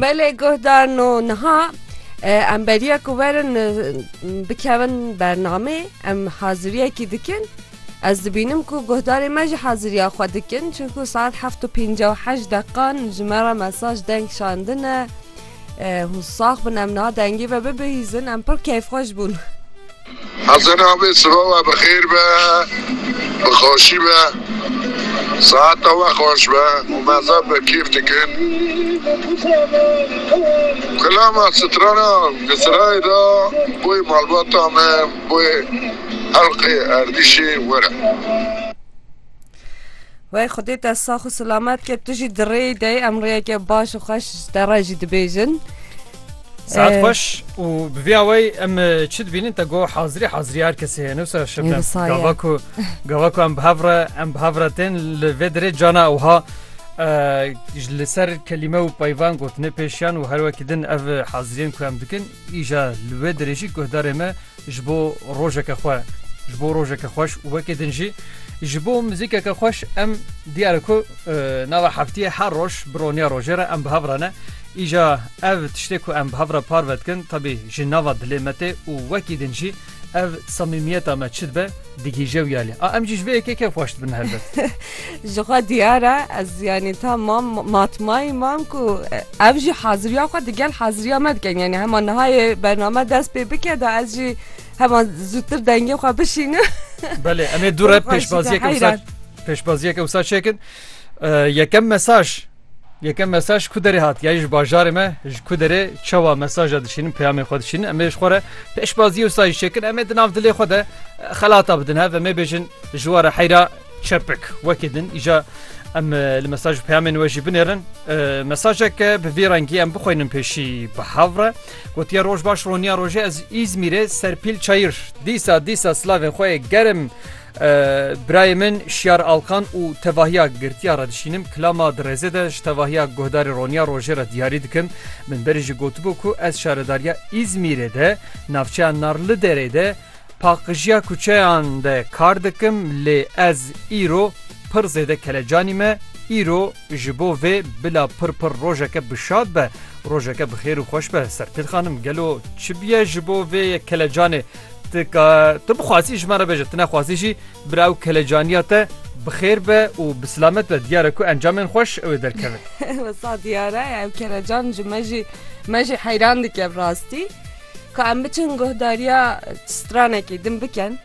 Belê guhdar no niha em beriya ku werin bikevin bernamê em haziriyekî dikin ez dibînim ku guhdarê me ji haziriya xwe dikin çunku saet heft û pênc û heşt deqan ji me re mesaj deng şandine. Hûn sax bin em na dengî ve bibihîzin em pir keyfxweş bûn. Hesen abi sıva ve bi xêr be, bi xweşî be. Saeta we xweş be û me zaf bi kêf dikin. Kilama strana di sirayê de boyê malbata me, boyê helqê erdîşê were. Wey xudê te sax û silamet ke tu jî di rêyî de em rêyeke baş û xweş ji te re jî dibêjin. Saat xweş û bi vî awey em çi dibînin te go hazirî hazirî her kesê heye newsa şebnem gava ku gava ku em bi hev re em bi hev re tên li vê dirê cana ewha li ser kelîme û peyvan gotinê pêşiyan û her wekî din ev haziriyên ku em dikin Îja li wê dirêjî guhdarê me ji bo rojeke xwe, ji bo rojeke xweş û wekî din jî ji bo mizîkeke xweş em diyar e ku nava heftiyê her roj bi roniya rojê re em bi hev re ne. Îja ev tiştê ku em bi hev re parve dikin tevî ji nava dilê me tê û wekî din jî Ev samîmiyeta me çi dibe digihîje wî alî. A em jî ji vê yekê kêf xweş dibin helbet. Ji xwe diyar e ez yanî ta mam matmayî mam ku ev jî haziriya xwe digel haziriya me dikin yanî hema nihayê bername dest pê bike da ez jî hema zûtir dengê xwe bişînim. Belê em ê dû re pêşbaziyeke wisa pêşbaziyeke wisa çêkin. Yekem mesaj Yekem mesaj ku derê hat ya ji bajarê me ji ku derê çawa mesaj a dişînin peyamê xwe dişînin em ê ji xwe re pêşbazî û sayîş çêkin em ê di nav dilê xwe de xelata bidin hev em ê bêjin ji were heyra çepik wekî din îja em li mesaj û peyamên we jî binêrin mesajek bi vî rengî em bixwînin pêşî bi hev re gotiye roj baş roniya rojê ez îzmîrê serpîl çayir dîsa dîsa silavên xwe germ Birayê min Şiyar Alkan û tevahiya girtiya re dişînim, kilama di rêzê de ji tevahiya guhdarê roniya rojê re diyarî dikim. Min berî jî gotibû ku ez şaredariya Îzmîrê de navçeya Narliderê de paqijiya kuçeyan de kar dikim lê ez îro pir zêde kelecanî me, îro ji bo vê bila pir pir rojeke bi şad be, rojeke bi xêr û xweş be. Serpêl xanim gelo çi bûye ji bo vê kelecanê? Ti ka tu bixwazî ji me re bêje tu nexwazî jî bira ew kelecaniya te bixêr be û bi silamet be diyare ku encamên xweş ew ê derkevin. Wisa diyare ew kelecan ji me jî me jî heyran dike bi rastî. Ka em biçin guhdariya stranekê din bikin.